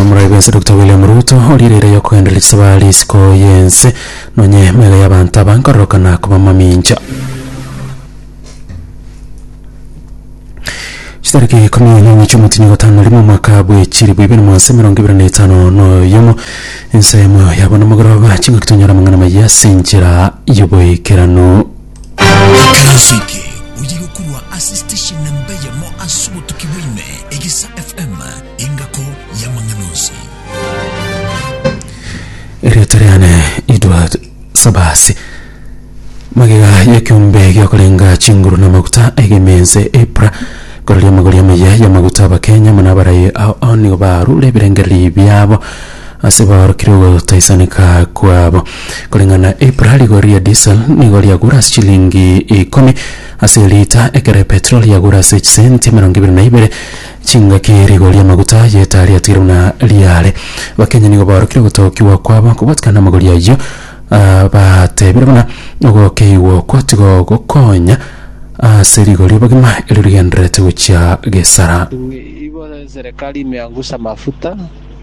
Omorwoi bwense Doctor William Ruto origereire yokogenderera chisaba risiko y'ense nonye emegega y'abanto aba nkororokana koba mamincha. Chitariki ikumi na enye chi'omotinyi gatano na rimo omwaka bw'echiribu ibere magana ase emerongo ebere na etano na oyomo ensemo yabo na amagoroba chingaki tonyore amang'ana amaya ase enchera y'oboikeranu. Ekero ase eke oye gokorwa ase station namba eyemo ase obotuki bwa ime, Egesa FM, engako y'amang'ana onsi. erieta riane edward sabasi magega yekiombe giokorenga chinguru na maguta egemense epra kororia amagori amaya y'amaguta abakenya muna abarayi ao ao nigo barure ebirengereri biabo Ase baorokire ogotaisaneka kwabo. Koreng'ana na April, rigori ria diesel nigo riagure ase chilingi ikomi ase elita, ekero epetroli yagure ase chisenti emerongo ebere na ibere chingaki. Rigori ri'amaguta y'etaa riatigire buna riare. Abakenya nigo baorokire ogotookiwa kwabo kobwatikana namagori ayio, ah, batebire buna ogokeigwa okwo tigo gokonya ase rigori obogima erio rigendererete gochia gesara. Igo serikali imeangusha mafuta.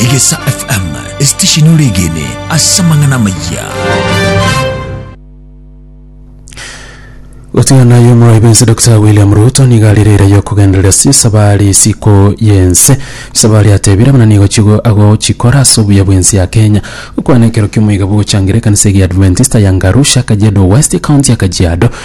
Egesa FM, esitesheni ore egene ase amang'ana amayia. Gotigana yo omoroibi ense Dr William Ruto niga arire eira y'okogenderera ase esabari isiko y'ense esabari atebire buna nigo chigo agochikora ase obuya bw'ense ya Kenya gokwana ekero ki'omoiga bw'ogochangira ekanisa egia Adventista ya Ngarusha Kajiado West county ya Kajiado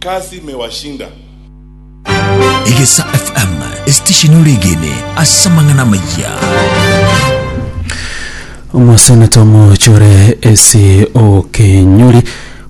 Kazi imewashinda. Egesa FM, esitesheni ore egene ase amang'ana amaya. Omoseneta omochore ase okenyori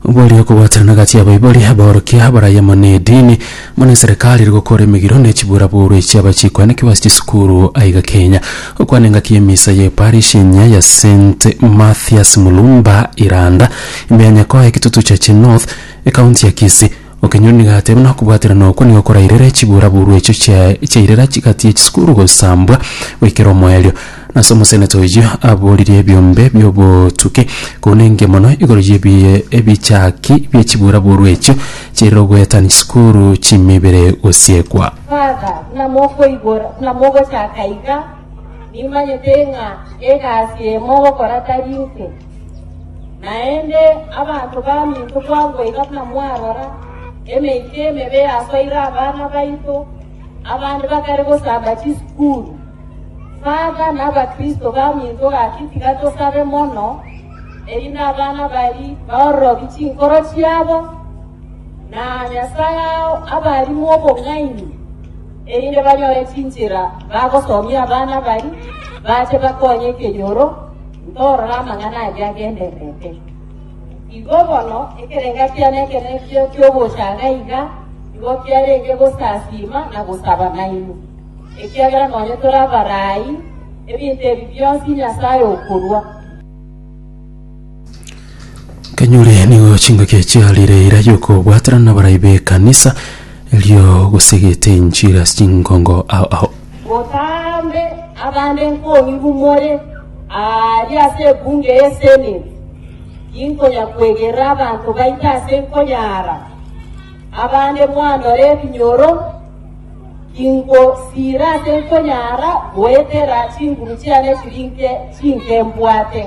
obwari okobwaterana gati abaibori abaorokia abarai amo na edini muna eserekari eri gokora emegiro na echibura boru echi abachikwa na kiwasi chisukuru aiga kenya okwana engaki emisa ye parish enya ya st mathias mulumba iranda imbe ya nyakoa ekitutu chache north Ekaunti ya Kisii. Okenyoro nigo agateba buna okobwaterana okwo nigo korairere chiburaburwa echio chiaye chiairera chigati ye chisukuru gosambwa goikera omoerio. Nase omoseneta oyio aboririe ebiombe biobotuki koune engiya mono igoro ye ebi- ebichaki bie chiburaburwa echio chiairera ogoetania chisukuru chimibere gosiekwa. Father, buna mokoigora, buna mogochaka iga, Nimanyete ng'a egasi eye mogokora tari inse. Naende abanto baminto kwabua iga buna mwarora, emeito emebe yasoire abana baito, abande bakare gosamba chisukuru. Father na abakristo baminto gaki tiga tosabe mono, erinde abana bari baororobi chinkoro chiabo, na Nyasae ao abarimo obong'aini. erinde banyore chinchera bagosomia abana baria, bache bakonye ekenyoro, ntorore amang'ana aria agendererete. Igo bono ekerenga kiane ekenekio ki'ogochaga iga nigo kiarenge gosasiima na gosaba nainwe, ekiagera nonye tore abaraai, ebinto ebi bionsi Nyasae okorua. Kanyuri nigo chingaki echi arire eira yokobwatana na barai b'ekanisa erio gosegete enchiri ase chingongo ao ao. Botambe abande nkoribu more aari ase ebunge y'eseneti, inkonya kwegerera abanto baito ase nkonyaara. Abande mwandora ebinyoro, ingosiira ase nkonyara goetera chinguru chiane chiri nke chinke mbwate.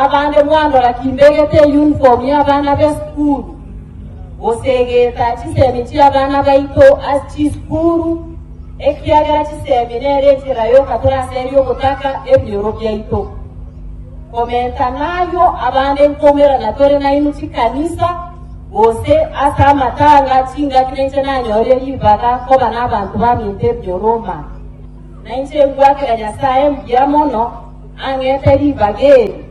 Abande mwandora kimbegete eyunifomu y'abana b'esukuru, gose egeeta chisemi chi'abana baito ase chisukuru, ekiagera chisemi nere enchera yoka toraseria ogotaka ebinyoro biaito. Komenta nayio, abande nkomerana tore nainwe chikanisa, Gose ase amatanga chingaki nainche nanyore ribaga koba nabanto baminto ebioroma. Nainche ngwakera Nyasae mbuya mono ang'ete ribaga eri.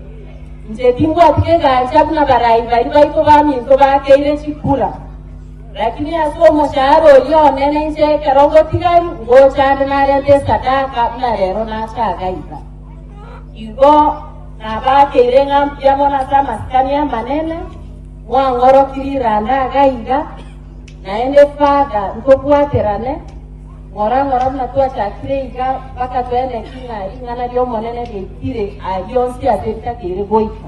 Inche timbwati kegancha buna barai baria baito baminto bakeire chikura. Lakini ase omoshahara oria one nainche ekero ngotigari ngocha ande narente esadaka buna rero nachaaga iga. Igo nabakeire ng'a mbuya mono ase amasikani amanene, mwang'oroki riranda iga iga, naende father ntobwaterane, ng'ora ng'ora buna twachakire iga, mpaka tweneki ng'a ring'ana ri'Omonene riaikire aria onsi ase ritakeire goika.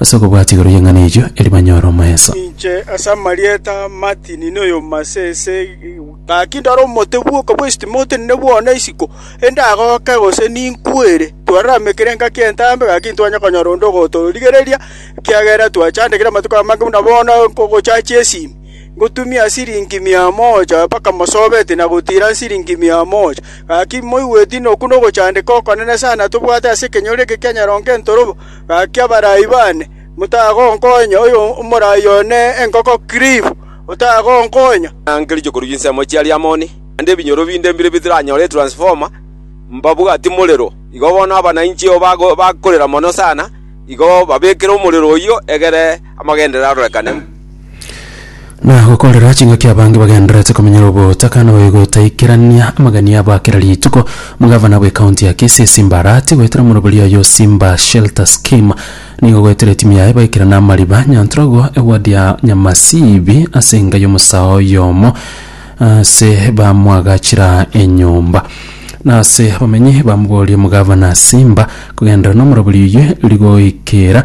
Ase okobwata igoro y'eng'ana eyio, erio banyore omoeso. Ninche ase amarieta a Martin, na oyoma ase ese gaki ndore omote bw'oka bwe Stimote ninde bwona isiko, endagoke gose ninkwere. Twararamekire engaki entambe, gaki ntwanya konyora onde ogotorigereria, ekiagera twachandekire amatuko amange buna bono nkogochachia esimi. Ngotumia siringi mia moja mpaka mosobeti na gotira siringi mia moja. Gaki moigweti noku nogochandeka okonene sana tobwate ase ekenyoro eke kia nyarongo entorobo. Gaki abaraai baane, motagonkonya oyo omoraai one enkoko kiribu, otagonkonya. Nanke riche korwa chinsemo chia Riamoni, naende ebinyoro binde mbire bitaranyore etransfoma, mbabwati morero. Igo bono abana inche bakorera mono sana, igo babekere omorero oyio egere. Amagenderero arorekane. Na gokorera ching'aki abange bagendererete komenyera ogotaka na goigotaikerania amagani abo a kera rituko, omogavana bwe county ya Kisii Simba Arati goetera omoroberi oye o Simba Shelter Scheme nigo goetera etimu yaye baikera namariba Nyantrogo eward ya Nyamasibi ase enka y'omosaao oyomo ase bamwagachera enyomba. Na ase abamenyi bamoboria omogavana Simba kogenderera nomoroberi oyio rigoikera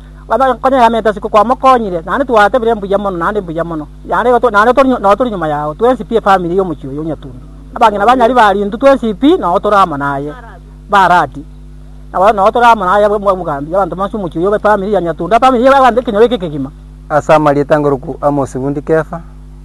Baba konya yamete siku kwamokonyire naende twatebire mbuya mono naende mbuya mono naende igo to- naende tori- nao tori nyuma yao twensi pi efamiri y'omochie oyo onyatundu abang'ina banyari ba Lintu twensi pi nao tore amo naye Barati nabo nao tore amo naye bwa- bw'obogambi y'abanto bonsi omochie oyo bw'efamiri ya Nyatundu efamiri ya abanto ekenyoro eke ekegima. Ase amarieta ngoroku Amosi Wundi Kefa,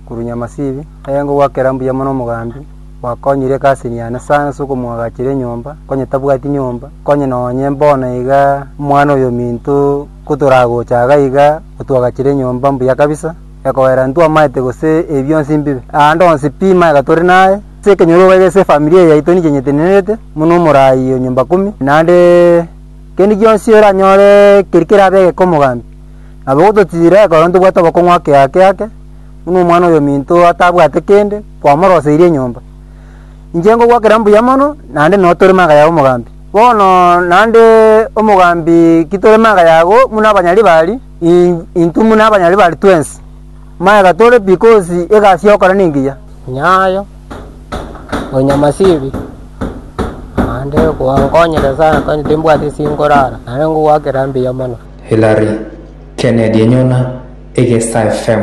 korwa Nyamasibi, aye ngogwakera mbuya mono omogambi, Gwakonyire egasi eye yane sana ase okomoagachera enyomba, onye tabwati nyomba, onye nonye bono iga omwana oyominto kotoragocha iga iga otuagachere enyomba mbuya kabisa, ekoera ntwamaete gose ebi bionsi mbibe. Aande onsi pi maega tore naye, ase ekenyoro iga iga ase efamiri eye yaito ninche nyetenererete buna omorai o nyomba kumi, naende kende gionsi oranyore keri kerabe egeka omogambi. Nabo gototira ekerore ntobwate obokong'u ake ake ake, buna omwana oyominto atabwate kende. kwamoroseirie enyomba. Inche ngogwakera mbuya mono, naende noo tore magaya ya omogambi. Bono naende omogambi ki tore magaya agwo muna abanyari bari, in- intwe muna abanyari bari twensi. Magega tore bikosi egasi yokora nengiya. Nyayo, onya masibi, naende kwangonyire sana kani timbwati singorara, naende ngogwakera mbuya mono. Hillary Kennedy enyona Egesta FM.